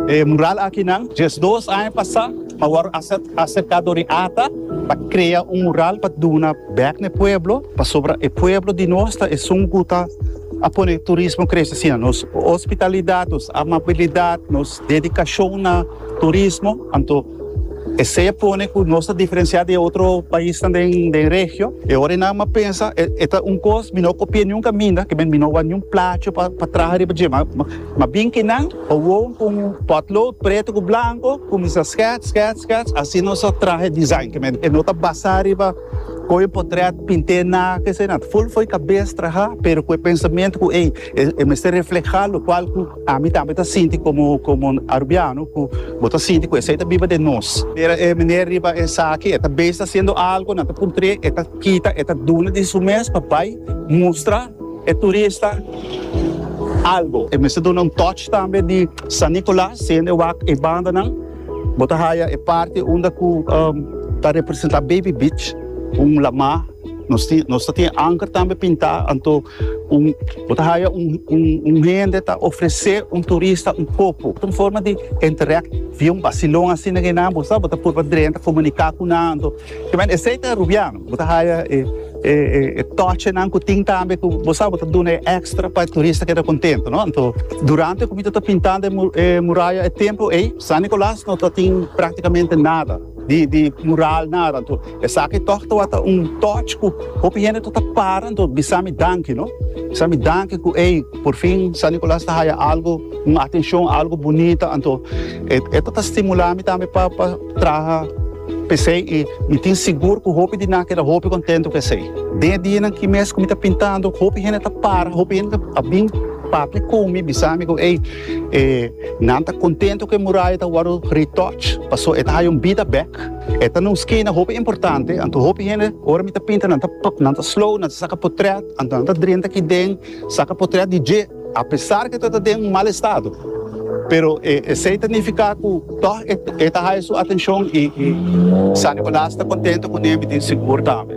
E mural akinan diesdos aña pasá a wòrdu aserká dor e ata pa krea un mural pa duna bèk na e pueblo pasobra e pueblo di nos ta esun ku ta a pone turismo krese asina. Nos hospitalidat, nos amabilidat, nos dedikashon na turismo anto. Esey a pone cu nos ta diferencia di e otro paisnan den den regio. E ora e nan a pensa e e ta un cos mi no copia niun caminda, que mi no wak niun placho pa pa traha riba dje. Ma ma bin ki nan gewoon cu un potlood preto cu blanco cuminsa skets skets skets asina nos a traha e design que e no ta basa riba coge un potret pinte na esey na. Ful fo'i cabes traha pero cu e pensamento cu ey e e mester refleha locual cu. Ami tambe ta sinti komo komo un Arubiano ku bo ta sinti ku esei ta biba den nos. Mira e meneer riba esaki, e ta bes ta hasiendo algo, nan ta puntr'é, e ta kita, e ta duna di su mes pa bai mustra e turista algo. E mester duna un touch tambe di San Nicolas, siendo e wak e bandanan. Bo ta haya e parti unda cu ta representa Baby Beach, un lama. Nos tin, nos ta tin e anker tambe pinta, anto un, bo ta haya un, un, un hende ta ofrece un turista un copo. Un forma di interact, via un bacilon asina, bo sa, bo ta purba drenta, comunica cu nan, anto. Te mester esey ta rubiano, bo ta haya e e e tochenan ku tin tambe ku bo sa bo ta duna e ekstra pa e turista keda kontentu no. Anto durante ku mi ta ta pintando e e muraya e templo ei San Nikolas no ta tin praktikamente nada di di mural nada anto esaki tog tabata un toch ku hopi hende ta ta para anto bisa mi danki no bisa mi danki ku ei por fin San Nikolas ta haya algu un atenshon algu bunita anto e e ta ta stimula mi tambe pa pa traha P'esei i mi tin sigur ku hopi di nan a keda hopi kontentu ku esei. Den e dianan ki mes ku mi ta pintando, hopi hende ta para, hopi hende a bin papia ku mi, bisa mi ku ei, e nan ta kontentu ku e muraya ta wòrdu retouch pasobra e ta haya un bida bèk. E ta na un skina hopi importante, anto hopi hende ora mi ta pinta nan ta nan ta slow, nan ta saka potrèt, anto nan ta drenta aki den, saka potrèt di dje. A pesar cu ta ta den un mal estado, pero e esey ta nifica cu tog e ta haya su atencion y San Nicolas ta contento cu niey mitin sigur tambe.